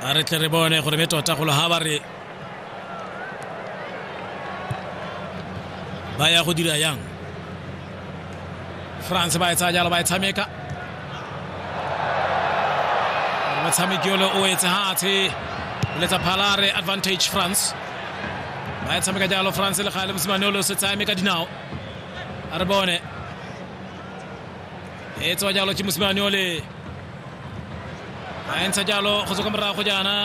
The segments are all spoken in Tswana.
a re tle re bone gore be tota golo ga ba re ba ya go dira yang france ba e tsaya jalo ba e tshameka motshameki ole o etse hatshe letsa phalare advantage france ba e tshameka jalo france le gale mosimane ole o se tsaya me ka dinao a re bone e tsewa jalo ke mosimane ole a entsha jalo go tswa kwa morago jaana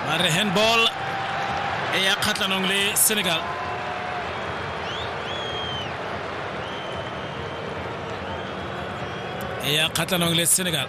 ba re handball e ya kgatlhanong le senegal e ya kgatlhanong le senegal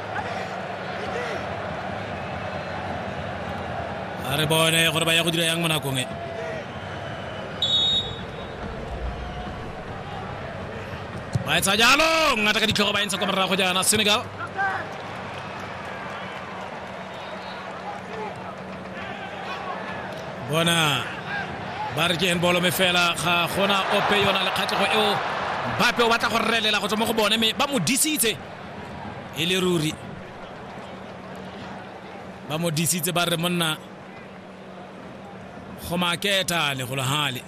a re bone gore ba ya go dira yang mo nakong e ba etsa jalo ngata ka ditlhogo ba entsha kwa morago jaana senegal bona ba re ke en bolo me fela ga gona ope yona le kgatlhego eo bape o batla go relela go tswa mo go bone mme ba mo disitse e le ruri ba mo disitse ba re monna go maketa legologale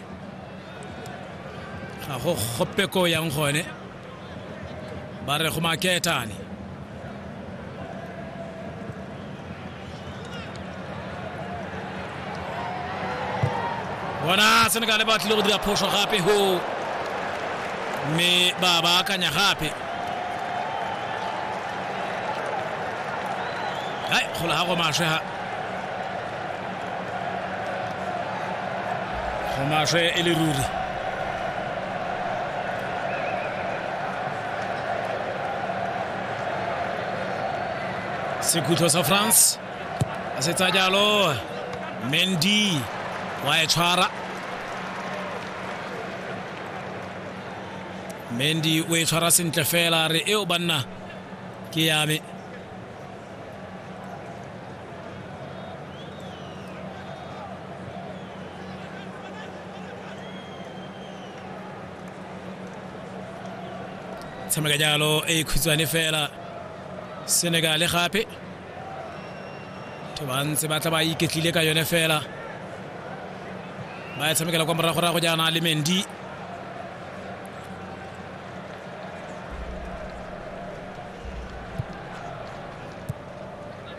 ga go gope ko yang gone ba re go maketane bona senegale ba tlile go dira phoso gape go mme ba ba akanya gape hai gola ga go maswe ha go maswe e le ruri sekhutlo sa france a setsa jalo mendy wa e tshwara mendy o e tshwara sentle fela re eo banna ke yame tshameka jalo e khutshwane fela senegale gape batho ba ntse ba tla ba iketlile ka yone fela ba e tshamekela kwa moragorago jaana le mendi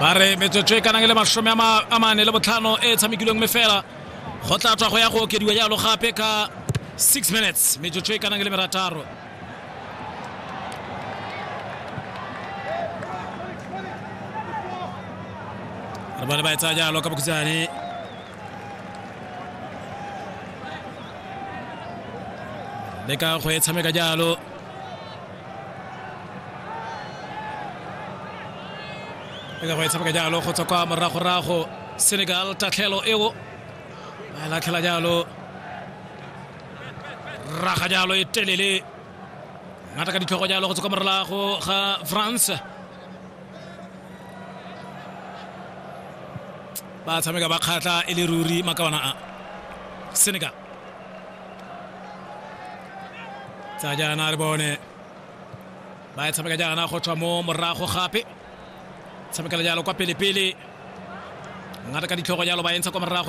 ba re metsotso e ka nang le masome a mane le botlhano e e tshamekilweng me fela go tla tswa go ya go okediwa jalo gape ka six minutes metsotso e ka nang le merataro Bale ba e tsaya jalo ka bokhutshwane le ka go e tshameka jalo le ka go e tshameka jalo go tswa kwa moragorago senegal tatlhelo eo ba e latlhela jalo raga jalo e telele ngata ka ditlhogo jalo go tswa kwa morelago ga france ba tshameka ba kgatlha e le ruri makawana a senegal tsa jaana re bone ba e tshameka jaana go tswa mo morago gape tshamekela jalo kwa pelepele ngata ka ditlhogo jalo ba entsha kwa morago